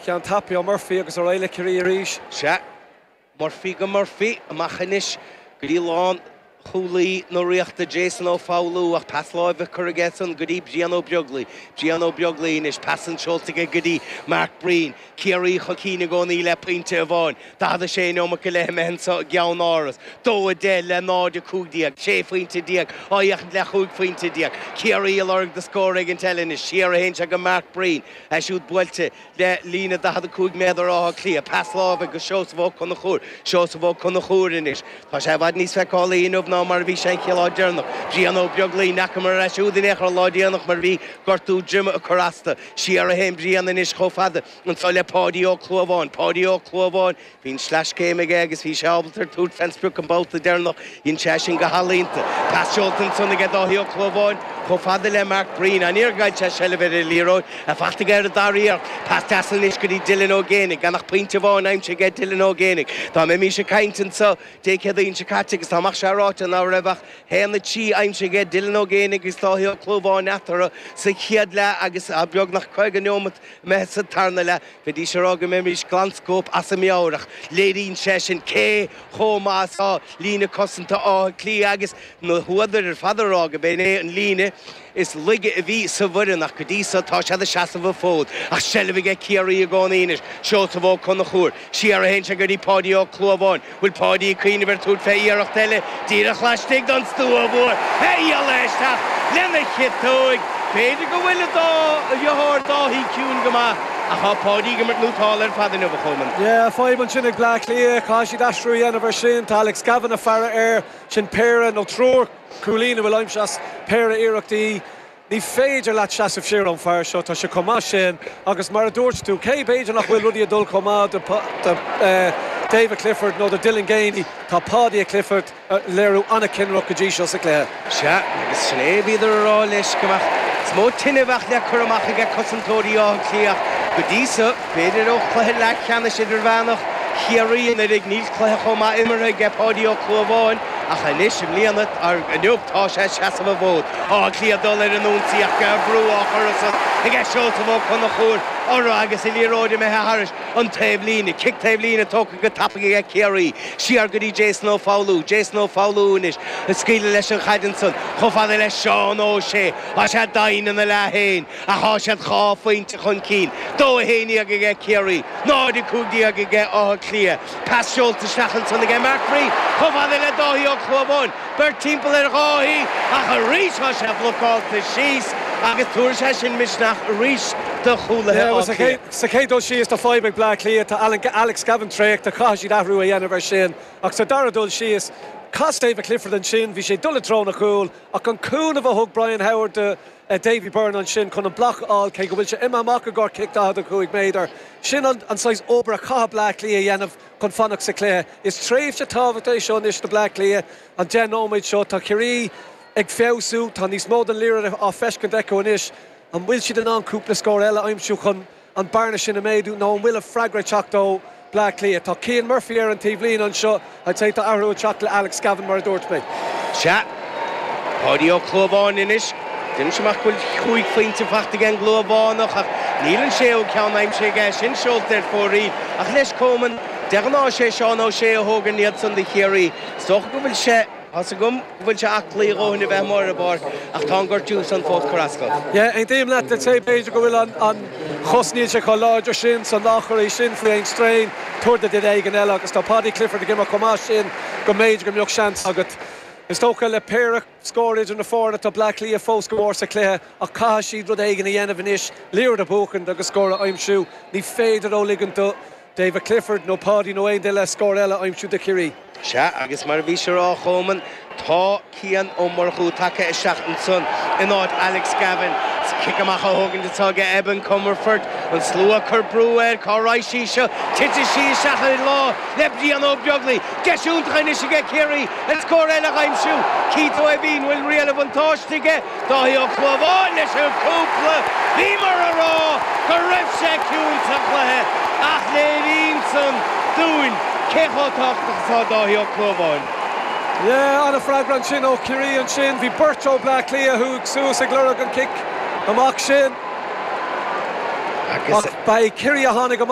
Déanann tapaidh ó Murphy agus ar aghaidh le Ciarraí arís. Sea, Murphy go Murphy, amach anois go dtí lán chúlaí na Ríochta Jason Ó Foghlú ach pas láimhe á chur aige-san go dtí Brian Ó Beaglaoich. Brian Ó Beaglaoich anois, pas an seolta aige go dtí Mark Breen. Ciarraí chun cinn i gcónaí le pointe amháin, 46 neomat go leith imithe anseo i gCeannáras, 2 10 le 0 15, 16 phointe á fhéachaint le chúig phointe déag. Ciarraí ag lorg do scór éigint eile anois, siar a théann sé go Mark Breen. É siúd buailte le líne 45 méadar Átha Cliath. Pas láimhe go Seosamh Ó Conchúir. Seosamh Ó Conchúir anois. Tá sé i bhfad níos feiceálaí inniu ná mar a bhí sé an chéad lá deireanach. Brian Ó Beaglaoich, ní fhacamar é siúd in aon chor an lá déanach mar bhí gortú droime ag cur as dó. Siar a théann Brian anois chomh fada anseo le Páidí Ó Clúmháin. Páidí Ó Clúmháin. Bhí an sleaschéim aige agus bhí sé ábalta tabhairt fén sprioc an babhta deireanach. Dhein sé sin go healaíonta. Pas seolta ansan aige Dáithí Ó Clúmháin chomh fada le Mark Breen. Aniar a thagann sé seilbh ar an liathróid fachta aige ar an dara iarracht. Pas deas anois go dtí Dylan Ó Géinigh. Gan ach pointe amháin aimsithe aige Dylan Ó Géinigh. Dá mbeimís ag caint anso Dé Céadaoin seo caite agus dá mbeadh sé ráite ná raibh ach haon a trí aimsithe aige Dylan Ó Géinigh agus Dáithí Ó Clúmháin eatarthu sa chéad leath agus beagnach caoga neomat imithe sa tarna leath. Bheidís ag rá go mbeimís glan scóip as ár meabhair ach léiríonn sé sin cé chomh maith is atá líne cosanta Átha Cliath agus na húdair ar fad ag rá gurb in é an líne is laige a bhí sa bhfoireann ach go dtí so tá siad ag seasamh an fód ach seilbh aige Ciarraí i gcónaí anois, Seosamh Ó Conchúir, siar a théann sé go dtí Páidí Ó Clúmháin. Bhfuil Páidí ag cuimhneamh ar tabhairt fé iarracht eile díreach laistigh don stua bhfuair a ghialla isteach lena chiotóig? B'fhéidir go bhfuil a dhriotháir Dáithí ciúin go maith ach tá Páidí ag imirt nótálta ar fad inniu a Choman. Yeah, fadhb ansin ag Bleá Cliath, chaithfidh siad aistriú a dhéanamh ar sin. Tá Alex Gavin ag faire air. Sin péire nó triúr cúilín a bhfuil aimsithe as péire iarrachtaí. Ní féidir leat seasamh siar ón fear seo, tá sé chomh maith sin agus mar a dúirt tú, cé, b'fhéidir nach bhfuil rudaí ag dul chomh maith do David Clifford nó do Dylan Geaney, tá Paudie Clifford ag léiriú an-chinnireacht go dtí seo sa gcluiche. Sea, agus sin é a bhíodar a rá leis, go mbeadh níos mó tine a bheadh le cur amach aige cosantóirí Átha Cliath go dtí seo. B'fhéidir ó chluiche leathcheannais idirmheánach Chiarraí anuraidh níl cluiche chomh maith imeartha aige Páidí Ó Clúmháin ach anois i mbliana, inniu, tá sé ag seasamh an fhóid. Áth Cliath ag dul ar an ionsaí ach tá brú á chur arís aige Seosamh Ó Conchúir orthu agus an liathróid imithe thairis an taobhlíne. Cic taobhlíne tógtha go tapaidh aige Ciarraí siar go dtí Jason Ó Foghlú. Jason Ó Foghlú anois ag scaoileadh leis an chaid ansan chomh fada le Seán Ó Sé. Tá sé doimhin ina leath fhéin. Ach tá siad dhá phointe chun cinn, dó a haon déag aige Ciarraí, 0 15 aige Áth Cliath. Pas seolta isteach ansan aige Mark Reid chomh fada le Dáithí Ó Clúmháin, beirt timpeall ar Dháithí ach arís tá sé blocálta síos agus tabharfaidh sé sin misneach arís do chúlaithe Átha Cliath. Sa chéad dul síos tá fadhb ag Bleá Cliath, tá Alan, Alex Gavin traochta, caithfidh siad athrú a dhéanamh ar sin. Ach sa dara dul síos, chas David Clifford ansin, bhí sé ag dul i dtreo an chúil ach an cúnamh a thug Brian Howard do, Davy Byrne ansin chun an bloc a fháil cé go bhfuil sé imithe amach i gcomhair cic 45 méadar. Sin an saghas obair a chaithfidh Bleá Cliath a dhéanamh chun fanacht sa chluiche. Is tréimhse tábhachta é seo anois do Bleá Cliath, an deich nóiméad seo. Tá Ciarraí ag feabhsú, tá níos mó den liathróid á feiscint acu anois. An bhfuil siad in ann cúpla scór eile a aimsiú chun an bearna sin a méadú nó an bhfuil an freagra ag teacht ó Bleá Cliath? Tá Cian Murphy ar an taobhlíne anseo, I'd say tá athrú ag teacht le Alex Gavin mar a dúirt mé. Sea. Páidí Ó Clúmháin anois. Déanann sé amach go bhfuil chúig phointe faighte ag an gClúmhánach ach níl an séú ceann aimsithe aige. Sin seolta ar fóraoil ach leis Coman. De ghnáth is é Seán O'Shea a thógann iad san do Chiarraí. Is dócha go bhfuil sé. Tá's agam go bhfuil sé aclaí a dhóthain a bheith amuigh ar an bpáirc ach tá an gortú san fós ag cur as dó. Yeah, aontaím leat I'd say, b'fhéidir go bhfuil an an chos níl sé chomh láidir sin so ná cuir é sin faoi aon strain tabhair do duine éigin eile agus tá Paudie Clifford ag imirt chomh maith sin go mb'fhéidir go mbeadh seans agat. Is dócha le péire scór idir na foirne tá Bleá Cliath fós go mór sa chluiche ach caithfidh siad rud éigin a dhéanamh anois liathróid a bhuachaint agus scór a aimsiú. Ní féidir leo ligint do David Clifford nó Paudie nó aon duine eile scór eile a aimsiú do Chiarraí. Sea, agus mar a bhís a rá, a Choman, tá Cian Ó Murchú tagtha isteach ansan in áit Alex Gavin. Is cic amach a thógaint atá aige Evan Comerford. An slua ag cur brú air, cá raghaidh sí seo? Titfidh sí isteach i lámh le Brian Ó Beaglaoich. Deis iontach anois aige Ciarraí ar scór eile d'aimsiú. Keith Ó hEimhín, bhfuil riail an bhuntáiste aige? Dáithí Ó Clúmháin leis an gcúpla. Bhíomar a rá go raibh sé ciúin sa chluiche ach léiríonn san dúinn cé chomh tábhachtach atá Dáithí Ó Clúmháin. Yeah, ana freagra ansin ó Chiarraí ansin. Bhí beirt ó Bleá Cliath a chuaigh suas ag lorg an cic amach sin ach ba é Ciarraí a tháinig amach.